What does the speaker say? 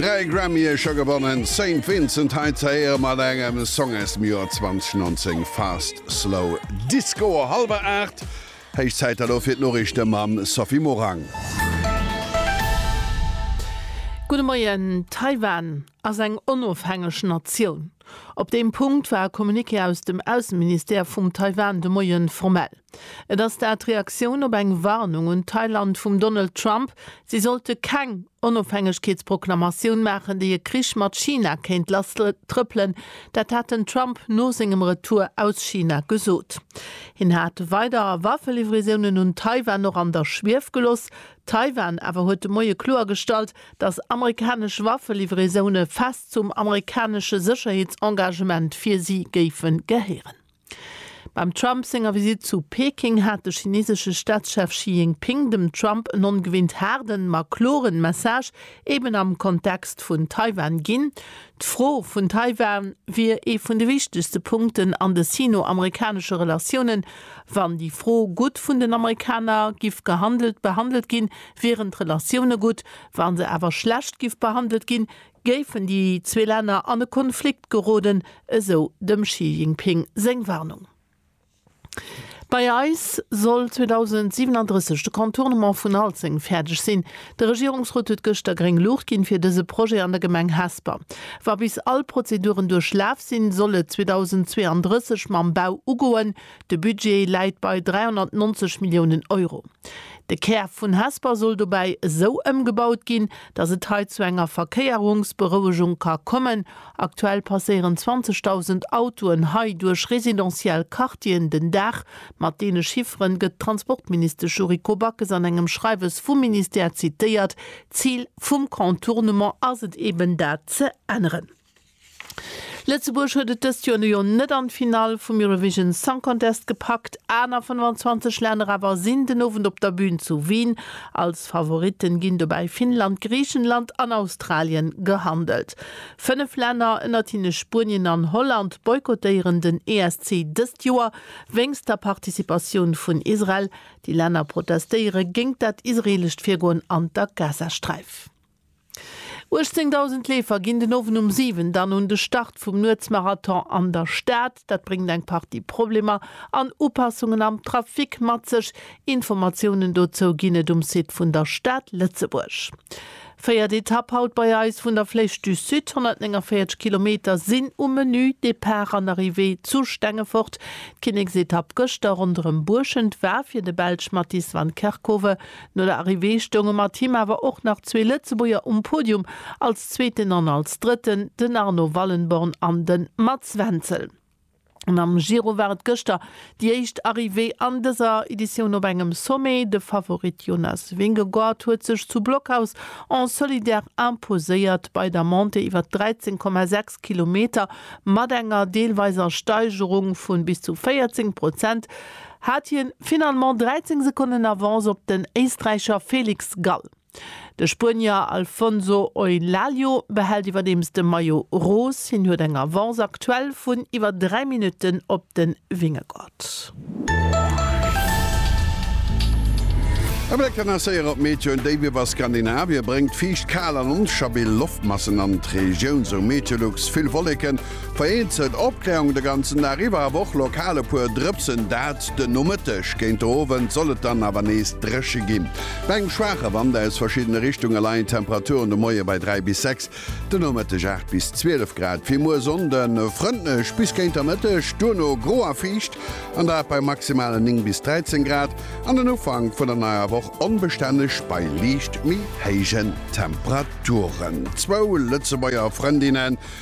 Dräi Grammye scho gewonnen, Saint Vincent hei ze héiere mat engem Song aus dem Joer 2019, Fast Slow Disco. Hallwer aacht, héich Zäit elo fir d'Noriichte mam Sophie Morang. Gudde Moien, Taiwan. ass eng onofhängeg Natioun. Op deem Punkt war e Communiqué aus dem Ausseministère vum Taiwan de Moie formell. Et ass dat d'Reaktioun op eng Warnung un Thailand vum Donald Trump, si sollte keng Onofhängegkeetsproklamatioun maachen, déi e Krich mat China kéint lasstrëppelen. Dat hat den Trump no sengem Retour aus China gesot. Hien hat weider Waffelivraiounen un Taiwan och an der Schwief geloss. Taiwan awer huet de Moie kloergestallt, dass amerikanesch Waffelivraisone fest zum amerikanesche Sécherheetsengagement fir si géife gehéieren. Beim Trump senger Visitt zu Peking hat de chinesesche Staatschef Xi Jinping dem Trump en ongewinnt haarden, ma kloren Message eben am Kontext vun Taiwan ginn. D'Fro vun Taiwan wier ee vun de wichtegste Punkten an de sino-amerikanesche Relatiounen. Wann déi Fro gutt vun den Amerikaner giff gehandelt, behandelt ginn, Wieren d'Relatioune gutt, wa se awer schlecht giff behandelt ginn, géifen déi zwee Länner an e Konflikt geroden, esou dem Xi Jinping seng Warnung. Bei eis soll 2037 de Contournement vun Alzeng fäerdeg sinn. De Regierungsrot huet gëschter gréng Luucht ginn, fir dëse Projet an der Gemeng Hesper. Wa bis all Prozeduren duerchlaf sinn, soll et 2032 mam Bau ugoen. De Budget läit bei 390 Milliounen Euro. De Kär vun Hesper soll dobäi esou ëmgebaut ginn, datt et hei zu enger Verkéierungsberouegung ka kommen. Aktuell passéieren 20.000 Autoen hei duerch residentiell Quartieren den Dag. Mat deene Chiffere gëtt d'Transportministesch Yuriko Backes an engem Schreiwes vum Ministère zitéiert. D'Zil vum Contournement ass et eben dat ze änneren. Lëtzebuerg huet et dëst Joer nu jo net an d'Finall vum Eurovision Song Contest gepackt, aner 25 Länner awer sinn den Owend op der Bün zu Wien. Als Favoritten ginn dobäi Finnland, Griichenland an Australien gehandelt. Fënnef Länner, ënnert hinne Spuenien an Holland, boykottéieren den ESC dëst Joer wéinst der Participatioun vun Israel. Déi Länner protestéiere géingt dat israeelescht Virgoen an der Gazasträif. 18.000 Leefer ginn den Owend um 7 dann un de Start vum Nuetsmarathon an der Stad. Dat bréngt eng Partie Problemer an Upassungen am Trafic mat sech. Informatiounen dozou ginn et um Site vun der Stad Lëtzebuerg. Véiert Etapp haut bei eis vun der Flèche du Sud, 149 Kilometer sinn um Menü. Depart an Arrivée zu Stengefort. D'Kinneksetapp gëschter ronderëm Buerschent war fir de Belsch Mattis van Kerckhove No der Arrivée stounge mat him awer och nach zwee Lëtzebuerger um Podium, als Zweeten an als Drëtten, den Arno Wallenborn an de Mats Wenzel. An am Giro war et gëschter déi éischt Arrivée an dëser Editioun op engem Sommet. De Favorit Jonas Vingegaard huet sech zu Blockhaus en solidaire imposéiert bei der Montée iwwer 13,6 Kilometer mat enger deelweiser Steigerung vu bis zu 14 Prozent. hat hien finalement 13 Sekonnen Avance op den Éisträicher Felix Gall. De Spuenier Alfonso Eulaglio behält iwwerdeems de Maillot Rose. Hien huet eng Avance aktuell vun iwwer 3 Minutten op de Vingegaard. E Bléck an der Séier op d'Météo, Déif iwwer Skandinavien bréngt fiicht, kal an onstabil Loftmassen an d'Regioun, sou Meteolux. Vill Wolleken Vereenzelt Opkläerung de ganzen Dag iwwer, awer och lokal e puer Drëpsen, dat den Nomëtteg. Géint de Owend soll et dann awer nees dréche ginn. Bei engem schwaache Wand aus verschiddene Richtunge leien d'Temperaturen de Moie bei 3 bis 6, de Nomëtteg 8 bis 12 Grad. Fir muer Sonn de frëndlech bis géint der Mëtteg, duerno gro a fiicht, an dat bei maximale 9 bis 13 Grad. An den Ufank vun der neier Woch onbestänneg bei liicht méi héijen Temperaturen. Zwou Lëtzebuerger Frëndinne